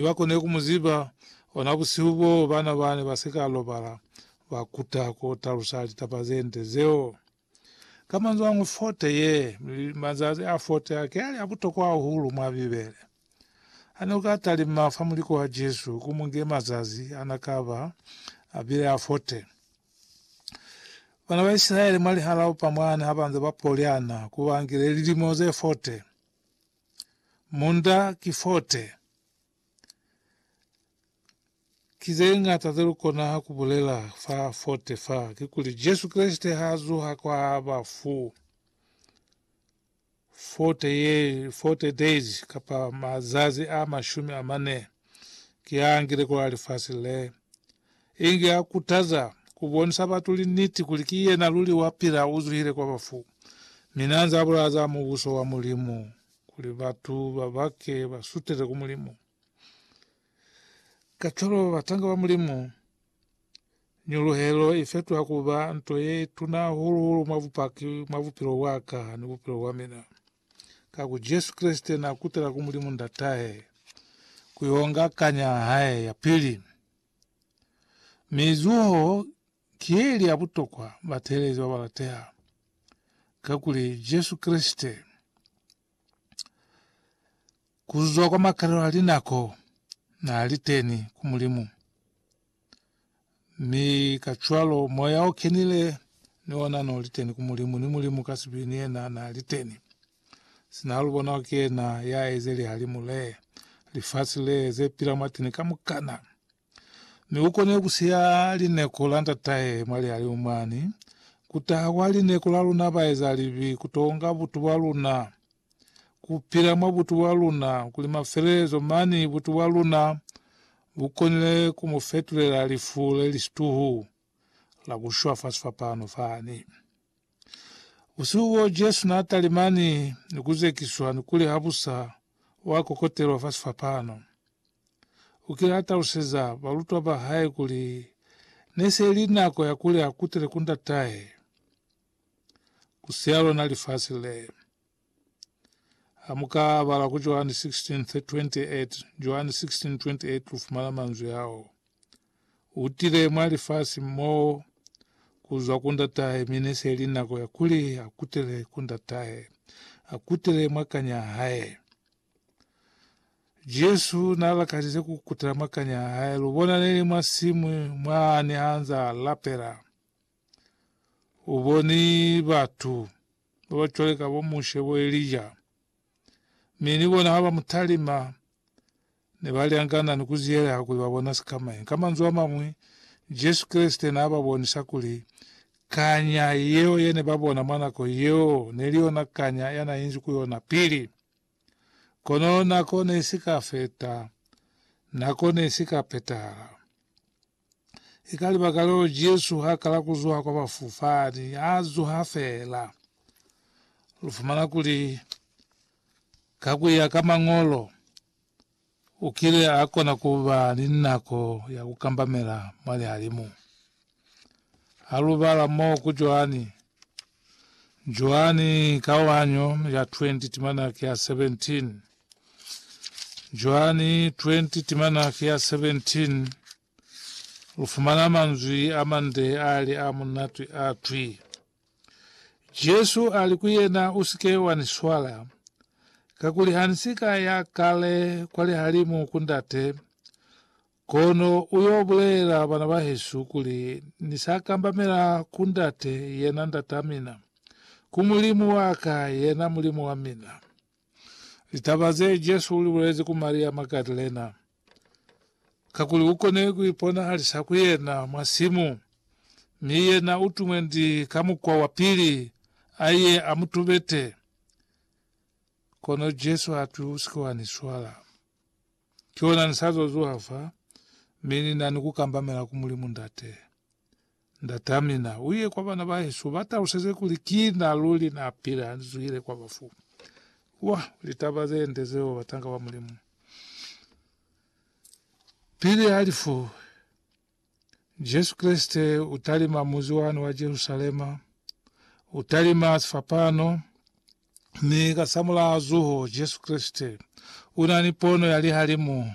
Ne ba kone ku mu ziba. Ona busihu boo, bana ba ne ba si ka lobala ba kuta ku talusa litaba ze nde zeo. Ka manzwañwi, fote ye, mazazi a fote a, ki ali a butokwa hahulu mwa Bibele. Ha ne u ka talima fa muliko wa Jesu, ku mu nge mazazi a na ka ba a bile a fote. Bana ba Isilaele mwa lihalaupa mwani ha ba nze ba poliana, ku ba ngile lilimo ze fote. Munda ki 40. Ki zeñata zelukona kubulela fa 40 fa, kikuli Jesu Kreste haazuha kwa bafu, 40 ye, 40 days kapa mazazi a mashumi amane, kiangile kwa lifasi le. Inge a kutaza, ku bonisa batu liniti kuli ki yena luli wa pila u zuhile kwa bafu, mi n'a nz'a bulaya za Mubuso wa Mulimu kuli batu ba bake ba sutele ku Mulimu. Kacwalo ba batanga ba Mulimu, nyuluhelo i fetuha ku ba nto ye tuna hahulu-hulu mwa Bupaki mwa bupilo bwa ka ni bupilo bwa mina. Ka ku Jesu Kreste na kutela ku Mulimu Ndatahe ku yo nga kanya ya hae ya pili. Mi zuho ki ye li ya butokwa, batehelezi ba ba lateha, kakuli Jesu Kreste, ku zwa kwa makalelo a linako, na li teni ku Mulimu. Mi kacwalo Moya o Kenile ni ona no li teni ku Mulimu, ni Mulimu ka sibi ni yena na li teni. Sina ha lu bona kuli ki yena ya eze lihalimu le, lifasi le, ze pila mwateni kamukana. Mi u koniwe ku siya lineko la ndatahe mwa lihalimu mwani, ku taha kwa lineko la luna baeza libi, ku to nga butu bwa luna, ku pila mwa butu bwa luna, kuli mafelelezo mani butu bwa luna Lu konile ku mu fetulela lifu le li situhu la ku shwa fa sifapano fani. Busihu boo Jesu n'a talimani ni ku zekiswa ni kuli habusa wa kokotelwa fa sifapano. U kile a taluseza balutwa ba hae kuli ne se li nako ya kuli a kutele ku Ndatahe, ku siya lona lifasi le. Ha mu ka bala ku Joani 16:28, Joani 16:28 lu fumana manzwi ao, U tile mwa lifasi mo ku zwa ku Ndatahe, mi ne se li nako ya kuli a kutele ku Ndatahe, a kutele mwa kanya hae. Jesu na lakalize ku kutela mwa kanya hae. Lu bona neli mwa simu mwa ne anza lapela. U boni batu ba ba cwale ka bo Mushe, bo Elija, mi ni bona ha ba mu talima, ne ba lyangana ni ku ziyeleha kuli ba bona sikamañi. Ka manzwi a mañwi, Jesu Kreste n'a ba bonisa kuli kanya yeo ye ne ba bona mwa nako yeo ne li yona kanya ya n'a inzi ku yona pili. Kono nako ne i si ka feta, nako ne i si ka petahala. I ka libakaleo Jesu ha kala ku zuha kwa bafu fani, a zuha fela. Lu fumana kuli, ka ku ya ka Mañolo, u kile a kona ku ba ni nako ya ku kambamela mwa lihalimu. Ha lu bala mo ku Joani, Joani kaohanyo ya 20 timana ki ya 17 Joani 20 timana ki ya 17 Lu fumana manzwi a mande a li a munatwi a twi, Jesu a li ku yena, U si ke wa ni swala, kakuli ha ni si ka ya kale kwa lihalimu ku Ndate, Kono u yo bulelela bana ba hesu kuli, Ni sa kambamela ku Ndate, yena Ndat'a mina, ku Mulimu wa ka, yena Mulimu wa mina. Litaba ze Jesu u li bulezi ku Maria Magadalena, kakuli u kone ku iponahalisa ku yena mwa simu, mi yena u tumwe ndi ka mukwa wa pili a ye a mu tubete. Kono Jesu ha twi, U si ke wa ni swala. Ki hona ni sa zwa zuha fa, mi ni na ni ku kambamela ku Mulimu Ndate. Ndat'a mina, u ye kwa bana ba hesu, u ba taluseze kuli ki na luli na pila, ni zwile kwa bafu. Wah, litaba ze nde zeo, batanga ba Mulimu! Pili ha lifu. Jesu Kreste u talima muzi wani wa Jerusalema, u talima sifapano, mi kasamulaho zuho Jesu Kreste una ni pono ya lihalimu